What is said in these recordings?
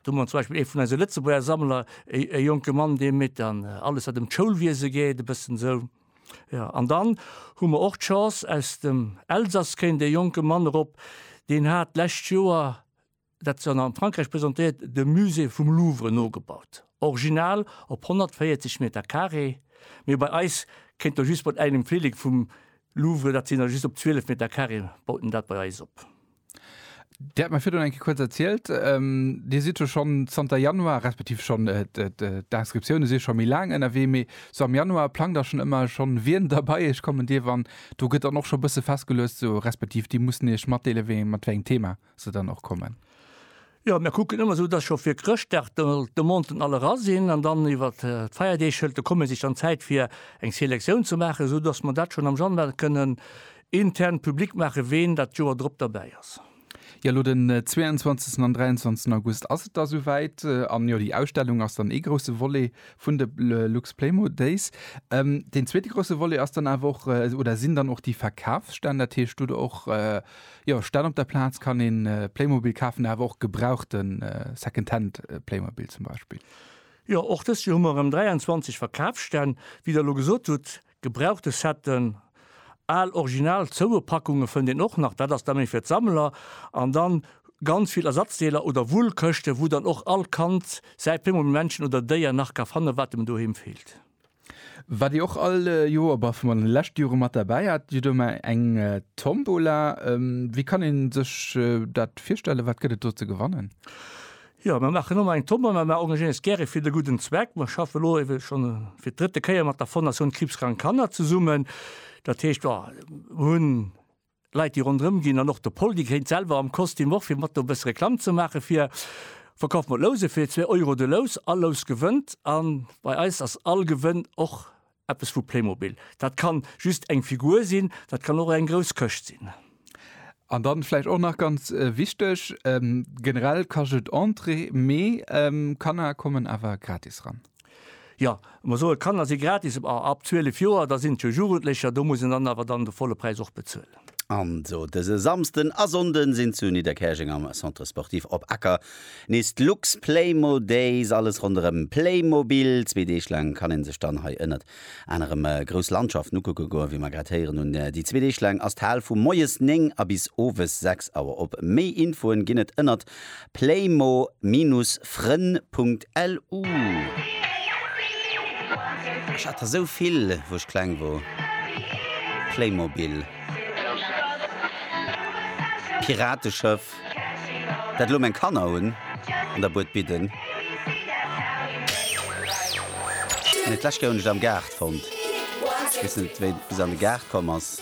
Do hu mer zum Beispill ee vun eise Lëtzebuerger Sammler, e jonke Mann, dee métt an alles, wat ëm d'Schoulwiese geet, e bëssen esou. Jo, an dann hu mer och d'Chance, aus dem Elsass kéint e jonke Mann erop, deen hat d'lescht Joer, dat ass dann a Frankräich presentéiert, de Musée vum Louvre nogebaut, original op 140 Meter Carré, mee bei eis kéint do just mat engem Flillek vum Louvre, dat sinn der just op 12 Meter Carré, baut en dat bei eis op. Dir hat mer virdrun eng Kéier kuerz erzielt, Dir sidd jo schonn zanter Januar, respektiv schonn, d'Inscriptioune si scho méi laang ënnerwee, mee sou am Januar plangt Der schonn ëmmer schonn, wien da bei Iech kommen dierf an do gëtt dann och scho e bësse festgeluecht, sou respektiv Dir musst Iech matdeele mat wéi engem Thema se dann och kommen? Jo, mir kucken ëmmer esou, dass scho fir Chrëschtdag d'Demanten all era sinn an dann iwwer d'Feierdeeg hëlt de Commerce sech dann Zäit fir eng Selektioun ze maachen, esou dass mer dat schonn am Januar kënnen intern public maachen, ween dat d'Joer drop derbäi ass. Jo, elo den 22 an 23 August ass et da souwäit. An jo, déi Ausstellung ass dann ee grousse Volet vun de Luxplaymo Days. Deen zweete grousse Volet ass dann awer och, oder sinn dann och déi Verkafsstänn, dat heescht, do hutt Der och Jo, statt op der Plaatz kann een Playmobil kaafen, awer och gebrauchten Secondhand Playmobil zum Beispill. Jo, och dëst Joer hu mer erëm 23 Verkaafsstänn. Wéi der elo gesot hutt, gebrauchte Setten, al original zoue Packunge fënnt een och nach, dat ass da méi fir d'Sammler, an dann ganz vill Ersatzdeeler oder Wullkëschte wou dann och all Kand säi Playmobil-Männchen oder Déier nach ka fannen, wat em doheem feelt. Waat dir och all Joer, bah vun de leschte Joeren mat derbäi hat, jo do emmer eng Tombola. Wéi kann een sech daat virstellen, waat gëtt et do ze gewannen? Jo mer machen emmer eng Tombola, mer engagéieren eis gären fir de gudden Zweck. Mer schaffen elo ewell schon fir d'drëtte Kéier mat der Fondation Kriibskrank Kanner zesummen. Daat heescht, jo mer hun Leit déi ronderëm ginn an och de Pol déi gréint selwer am Kostüm och fir mat do e bësse Reklamm ze maache fir Verkauf mat Louse fir zwee Euro de Lous. All Lous gewënnt a bei eis ass all Gewënn och eppes vu Playmobil. Dat ka just eng Figur sinn, dat kann och eng grouss Këscht sinn. An da vläicht och nach ganz wichteg, generell kascht et Entrée, mee Kanner kommen awer gratis ran. Jo, mer soen, d'Kanner si gratis a ab 12 Joer, da sinn et jo Jugendlecher, do muss een dann awer dann de volle Präis och bezuelen. An esou dëse Samsden a Sonnden sinn zu Nidderkäerjeng am Centre Sportif Op Acker nees d'Lux Playmo Days. Alles ronderëm Playmobil. Zwee Deeg laang kann een sech dann hei ënnert An erëm grouss Landschaften ukucke goen, wéi mer grad héieren hunn. Déi zwee Deeg laang ass d'Hal vu moies 9 a bis owes 6 Auer op. Méi Infoen ginn et ënnert playmo-fren.lu. Ech hat der sou vill wou ech kleng wor, Playmobil, Pirateschëff. dat elo meng Kanner hunn an der Bued bidden, mee d'lescht Kéier hunn ech et am Gaart fonnt. Ech weess net, wéi et bis an de Gaart komm ass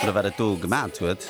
oder wat et do gemat huet.